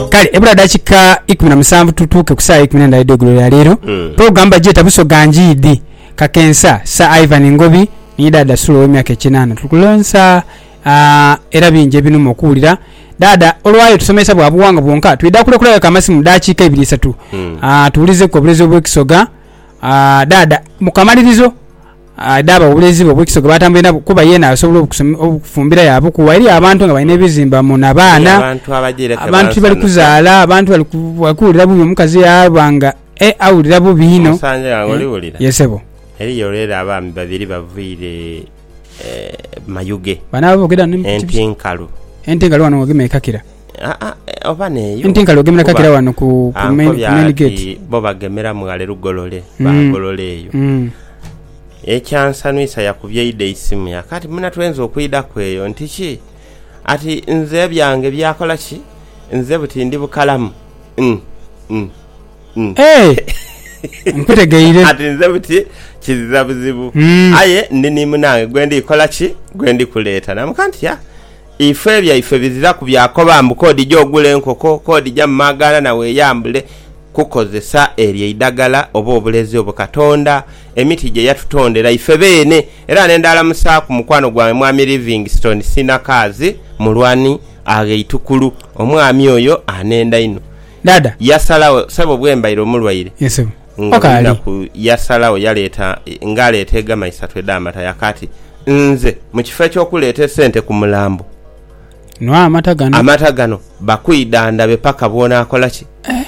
kale ebula dakika ikumi na musanvu tutuuke ku saawa eikumi n'endala edh'eigulo lya leero Mm. pulogulamu bagyeta busoga njiidhi kakensa sir ivan ngobi ni daada sula ow'emyaka ekinaana tukulonsa ah, era bingi ebinuma okuwulira daada olwayo tusomesa bwa buwangwa bwonka twidha kulekulayoku amasimu mu dakiika ibiri isatu Mm. Ah, tuwulizeku obulezi obw'ekisoga Ah, daada mu kamalirizo Adha abawolereze be obwekiso gwe batambwire nabo kuba yeena asobola obukufumbira yaabukuwa eri abantu nga balina ebizimba muna baana, abantu tibali kuzaala, abantu bali kuwulira bubi omukazi yaaba nga e awulira bubi inho. Ye sebo. Eriyo rero abaami babiri bavaire e mayuge, ente enkalu. Ente enkalu ghano nga ogema ekakira. Nti nkali ogemera kakira wano ku main gate. Bo bagemeramu ghale lugolole, baagolola eyo. Ekyansanhusa yakubye idho eisimu yaka ati, Muna twenze okwidhaku eyo nti ki? Ati, Nze ebyange byakola ki? Nze buti ndi bukalamu. Ati, Nze buti kiziza buzibu. Aye ndi ni munange gwe ndi kola ki? Gwe ndi kuleeta. Naamugamba nti, Ya, Ife ebyaife biziraku byakoba mbu k'odije ogule enkoko, k'odija mu maaganda na weeyambule kukozesa eryo eidagala oba obulezi obwo Katonda emiti gye yatutondera ife beene. Era ne ndaalamusaaku mukwano gwange Mwami Livingstone Sinakaazi Mulwani Agheitwkulu. Omwami oyo anhenda inho. Dada. Yasalagho sebo bwembaire omulwaire Yes sebo. nga Okaali. olunaku yasalagho yaleeta nga aleeta egama isatu edh'amata yaka ati nze mukifo eky'okuleeta esente ku mulambo Nwa amata gano. amata gano bakwidhandhabe paka bw'onaakola ki?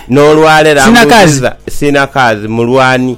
N'olwalero Sinakaazi. ambuziza sinakaazi mulwani.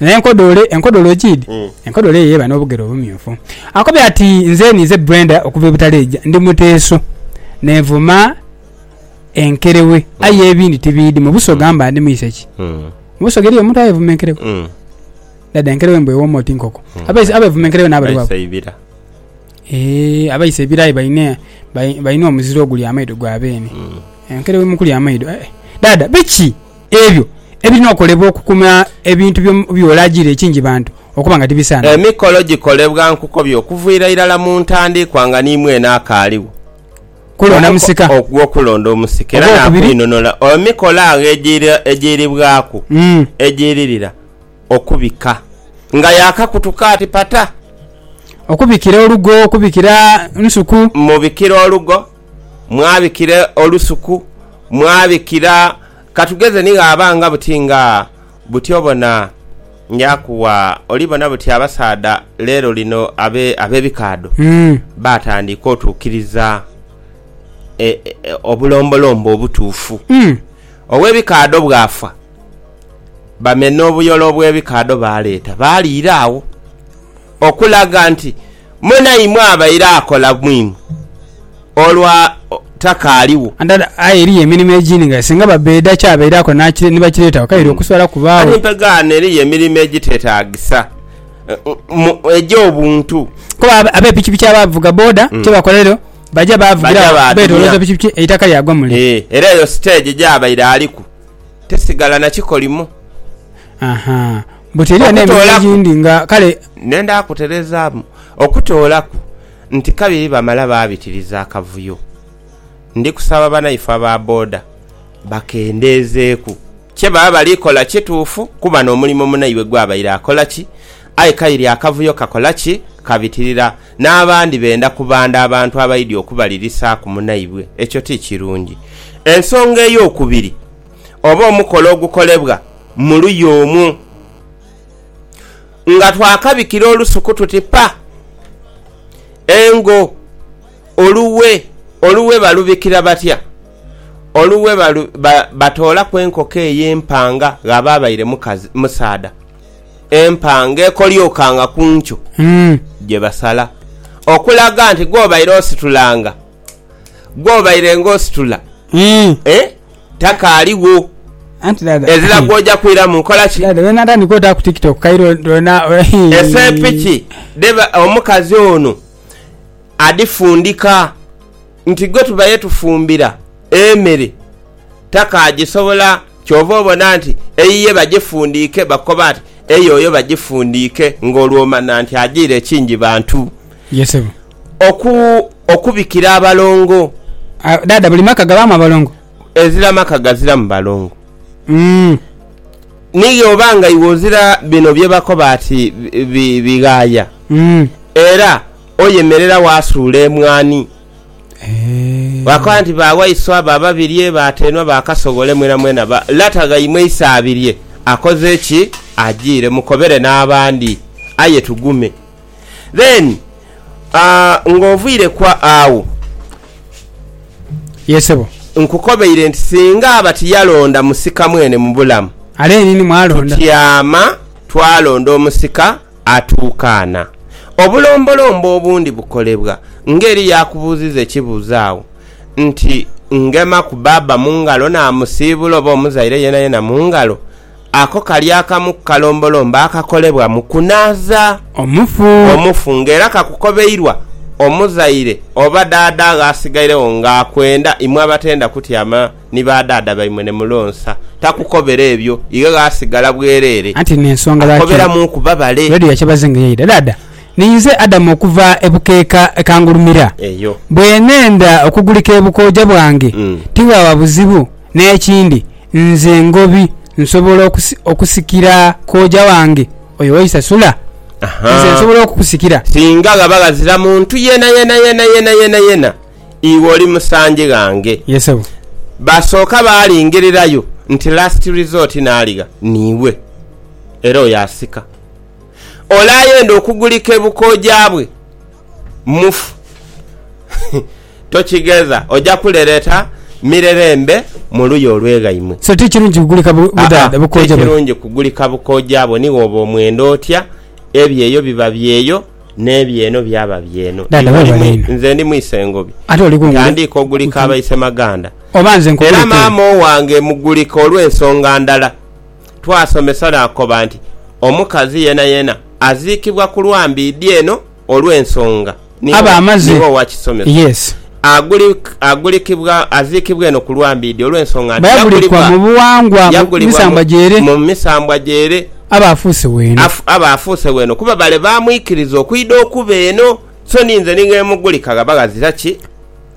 N'enkodoole, enkodoole ogiidhi? Enkodoole eyo eba n'obugere obumyufu. Akobye ati, Nze ninze Brenda okuva e Butaleja. Ndi muteesu. Neevuma enkereghe. Aye ebindi tibiidhi. Mu Busoga mba ndi mwise ki? Mu Busoga eriyo omuntu ayevuma enkereghe? Dhaadha, enkereghe mbu ewooma oti nkoko. Abevuma enkereghe n'abali babo? Baisa ibira. Eeh, abaisa ebira aye balina, balina omuzira ogulya amaido gwa beene. Enkereghe mu kulya amaido? Eeh, dhaadha biki? Ebyo ebirina okolebwa okukuma ebintu byo byolagira ekingi bantu okuba nga tibisana. Emikolo gikolebwa nkukobye okuviira irala mu ntandikwa nga nimwene akaaligho. Kulonda musika. Ogwo kulonda omusika era nakwinonora emikolo agho egiira egiiribwaku egiiririra okubika nga yakakutuka ati pata. Okubikira olugo, okubikira nsuku. Mubikira olugo. mwabikira olusuku, mwabikira katugeze ni ghaba nga buti nga buti obona Yakuwa. Oli bona buti abasaadha leero lino ab'ebikaadho baatandika otuukiriza obulombolombo obutuufu. Ow'ebikaadho bw'afa, bamena obuyole obw'ebikaadho baaleeta baaliira agho. Okulaga nti munaimwe abaire akola mu imwe olwa takaaliwo. Aye eriyo emirimo egindi nga singa Babeda ky'abaire akola ni bakireetagho, kaire okusobola kubaagho. Kati mpegaano eriyo emirimo egiteetaagisa egy'obuntu. Kuba abe pikipiki abavuga boda kyebakola eriyo baja baavugiragho beetoolooza pikipiki eitaka lyagwa mule. Era eyo siteegi gy'abaire aliku tesigala na kikolimo. Aha. But eriyo n'emirimu Okutoolaku. egindi nga kale Nenda kutereezaamu. Okutoolaku nti kabiri bamala baabitiriza akavuyo, ndi kusaba banaife aba boda bakendeezeeku. Kye baba bali kola kituufu kuba n'omulimo munaibwe gw'abaire akola ki? Aye kaire akavuyo kakola ki? Kabitirira. N'abandi benda kubanda abantu abaidhi okubalirisaaku munaibwe. Ekyo ti kirungi. Ensonga ey'okubiri oba omukola ogukolebwa. mu luya omwo. Nga twakabikira olusuku tuti pa! Engo, oluwe, oluwe balubikira batya? Oluwe batoolaku enkoko eyo empanga, ghaba abaire musaadha, empanga ekolyokaanga ku nkyo gye basala okulaga nti gwobaire ositulanga. gwobaire nga ositula mm. eh, takaaligho anti dada ezira gwoja kwiramu nkola ki dada wena atandika ota ku tiktok kairo dona esepiki deba omukazi ono adifundika nti gwe tubaye tufumbira emere takagisobola kyova obona nti eyiye bagifundiike bakoba nti eyoyo bagifundiike nga olwomana nti agiire ekingi bantu yesebo okubikira abalongo. Dhaadha buli maka gabaamu abalongo? Ezira maka gaziramu balongo. Ni bw'oba nga iwe ozira bino bye bakoba ati bighaaya, era oyemerera waasuula emwaani, waakoba nti ba waiswa, ba Babirye, ba Teenwa, ba Kasowole mwenamwena ba lata ghaimwe Isaabirye akoze ki? Ajiire. Mukobere n'abandi aye tugume. Then nga oviire ku agho. Yee sebo. Nkukobeire nti singa aba tiyalonda musika mwene mu bulamu. Ale yenini mwalonda. Tutyama twalonda omusika atuukaana. Obulombolombo obundi bukolebwa nga eri yakubuuziza ekibuuzo agho nti, Ngema ku baaba mu ngalo naamusiibula oba omuzaire yenayena mu ngalo? Ako kali akamu ku kalombolombo akakolebwa mu kunaaza omufu nga era kakukobeirwa omuzaire oba dhaadha agho asigairegho nga akwenda imwe abatenda kutyama ni ba dhaadha baimwe ne mulonsa. Takukobera ebyo, ighe gh'asigala bwereere akukoberamu ku babale. Ninze Adamu okuva e bukeeka ekangulumira. Bwe neenda okugulika ebukooja bwange, tiwaaba buzibu. N'ekindi. Nze Ngobi nsobola okusikira kooja wange oyo Waisasula? Nze nsobola okukusikira? Singa ghaba ghazira muntu yeenayeena yeenayeena yeenayeena, iwe oli musanje ghange. Ye Ssebo. Baasooka baalingirirayo nti last resort naaligha niiwe. Era oyo asika. Ole ayenda okugulika e Bukooja bwe, mufu. tokigedha oja kulereta mirerembe mu luya olweghaimwe. So ti kirungi kugulika budhaadha bukooja bwona. Aa, ti kirungi kugulika bukooja bwoni woba omwenda otya, ebyeyo biba byeyo n'ebyeno byaba byeno. Dhaadha Iwe oli webale mwi, inho. nze ndi mwise Ngobi. Ate oli ku nguudo. Ntandiika ogulika abaise maganda. Oba nze nkugulike Era eno. maama owange mugulika olw'ensonga ndala. Twasomesa naakoba nti omukazi yenayena aziikibwa ku lwambiidhi eno Olw'ensonga niiwe niiwe owa kisomeso. Yes. Aguli, aguliki-bwa, aziikibwa eno ku lwambiidhi, olw'ensonga nti Yagulibwa, mu buwangwa, yagulibwa mu, mu misambwa gyere, aba afuuse w'eno. Af, aba afuuse w'eno, kuba bale baamwikiriza okwidha okuba eno. So ni nze ni ng'emugulika ghaba ghazira ki?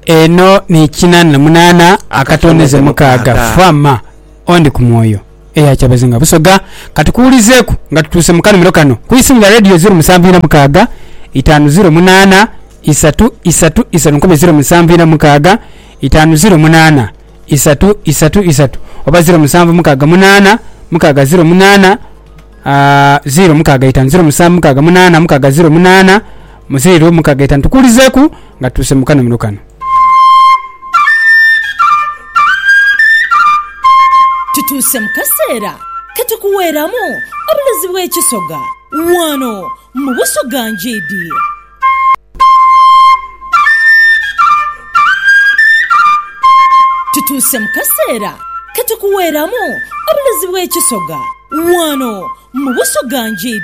Eno ni kinaana na munaana akatoonheze mukaaga, fa ma, ondi ku mwoyo. eya Kyabazinga Busoga. Ka tukuwulizeeku nga tutuuse mu kanhumiro kano ku isimu lya Radio zeero musanvu inha mukaaga itaanu zeero munaana isatu isatu isatu. Nkobye zeero musanvu inha mukaaga itaanu zeero munaana isatu isatu isatu oba zeero musanvu mukaaga munaana mukaaga zeero munaana. Aa ziro mukaaga itanu ziro musanvu mukaaga munaana mukaaga ziro munaana mu ziro mukaaga itanu tukuulizeeku nga tutuuse mu kanomero kano. Tutuuse mu kaseera ke tukuweeramu obulozi bw'ekisoga wano mu Busoga Ngyidi. Tutuuse mu kaseera ke tukuweeramu obulezi bw'ekisoga wano mu Busoga Nji.